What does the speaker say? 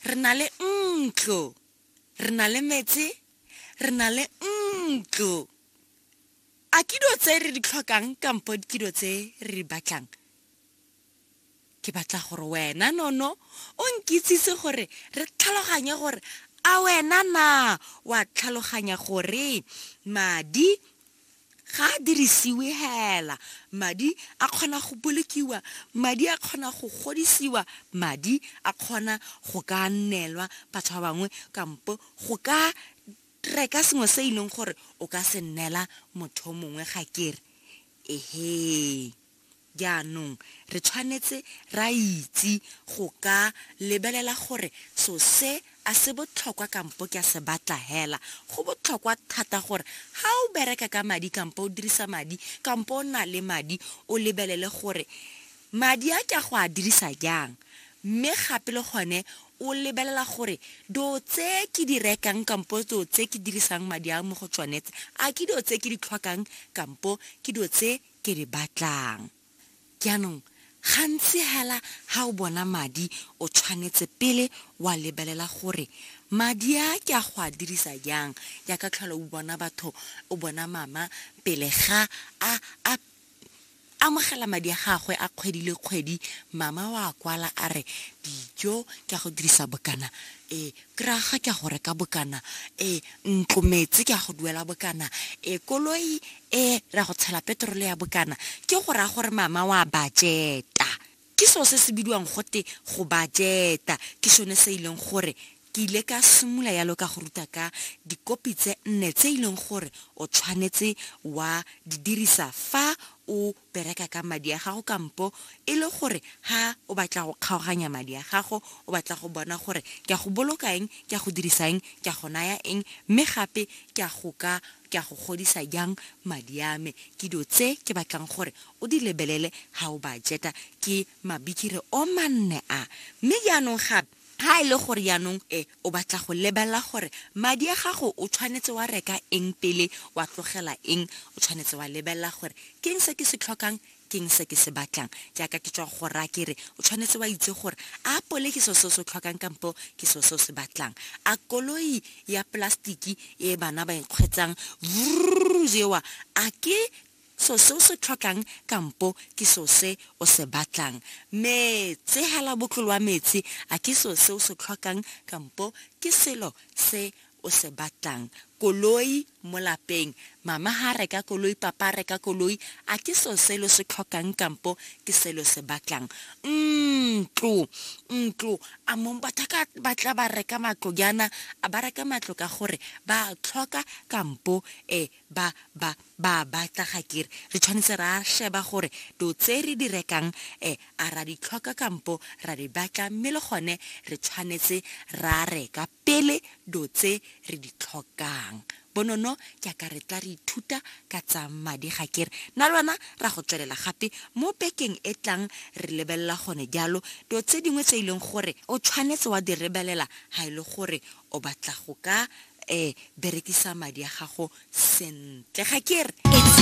Re na le ntlo. Re na le metse. Re na le ntlo. A ke dilo tse re di tlhokang kampo ke dilo tse re di batlang? Ke batla gore wena nono o nkitsise gore re tlhaloganye gore a wena na wa tlhaloganya gore madi ga a dirisiwe hela, madi a kgona go bolokiwa, madi a kgona go godisiwa, madi a kgona go ka nnelwa batho ba bangwe kampo go ka reka sengwe se e leng gore o ka se nnela motho o mongwe ga kere, ehe. Jaanong re tshwanetse ra itse go ka lebelela gore so se a se botlhokwa kampo ke a se batla hela. Go botlhokwa thata gore ha o bereka ka madi kampo o dirisa madi kampo o na le madi o lebelele gore madi a ke a go a dirisa jang mme gape le gone o lebelela gore do tse ke di rekang kampo do tse ke dirisang madi a mo go tsone tse a ke do tse ke di tlhokang kampo ke do tse ke di batlang. Jaanong, gantsi hela ha o bona madi, o tshwanetse pele wa lebelela gore madi a ke a go a dirisa jang, jaaka tlhola o bona batho, o bona mama pele ga a a amogela madi a gagwe a kgwedi le kgwedi, mama wa kwala a re dijo ke a go dirisa bokana, e Kry-aga ke a go reka bokana e, ntlo, metsi ke a go duela bokana e, koloi e, re a go tshela petrole ya bokana. Ke go raya gore mama o a bajeta. Ke seo se se bidiwang gote go bajeta. Ke sone se e leng gore ke ile ka simolola yalo ka go ruta ka dikopi tse nne tse e leng gore o tshwanetse wa di dirisa fa o Bereka ka madi a gago kampo e le gore ha o batla go kgaoganya madi a gago, o batla go bona gore ke a go boloka eng, ke a go dirisa eng, ke a go naya eng mme gape ke a go ka ke a go godisa jang madi a me. Ke dilo tse ke batlang gore o di lebelele ha o bajeta ke mabikiri o manne a. Mme jaanong gape Ga e le gore jaanong e o batla go lebelela gore madi a gago o tshwanetse wa reka eng pele wa tlogela eng, o tshwanetse wa lebelela gore ke eng se ke se tlhokang, ke eng se ke se batlang. Jaaka ke tswa go raya ke re o tshwanetse wa itse gore a apole ke selo se o se tlhokang kampo ke selo se o se batlang. A koloi ya plastic e bana ba e kgweetsang vroom ewa a ke Seo se o se tlhokang kampo ke seo se o se batlang. Metsegala botlolo wa metsi, a ke seo se o se tlhokang kampo ke selo se o se batlang. Koloi mo lapeng, mama ga a reka koloi, papa a reka koloi, a ke seo se lo se tlhokang kampo ke se lo se batlang. Ntlo, ntlo, a mong batho ka ba tla ba reka matlo jaana, a ba reka matlo ka gore ba a tlhoka kampo e ba ba ba batla ga kere re tshwanetse ra sheba gore do tse re di rekang um a ra di tlhoka kampo ra di batla mme le gone re tshwanetse ra reka pele do tse re di tlhokang bonono jaaka re tla re ithuta ka tsa madi ga kere na lwana ra go tswelela gape mo bekeng e tlang re lebelela gone jalo do tse dingwe tse e leng gore o tshwanetse wa di rebelela ga e le gore o batla go ka um berekisa madi a gago sentle ga ke re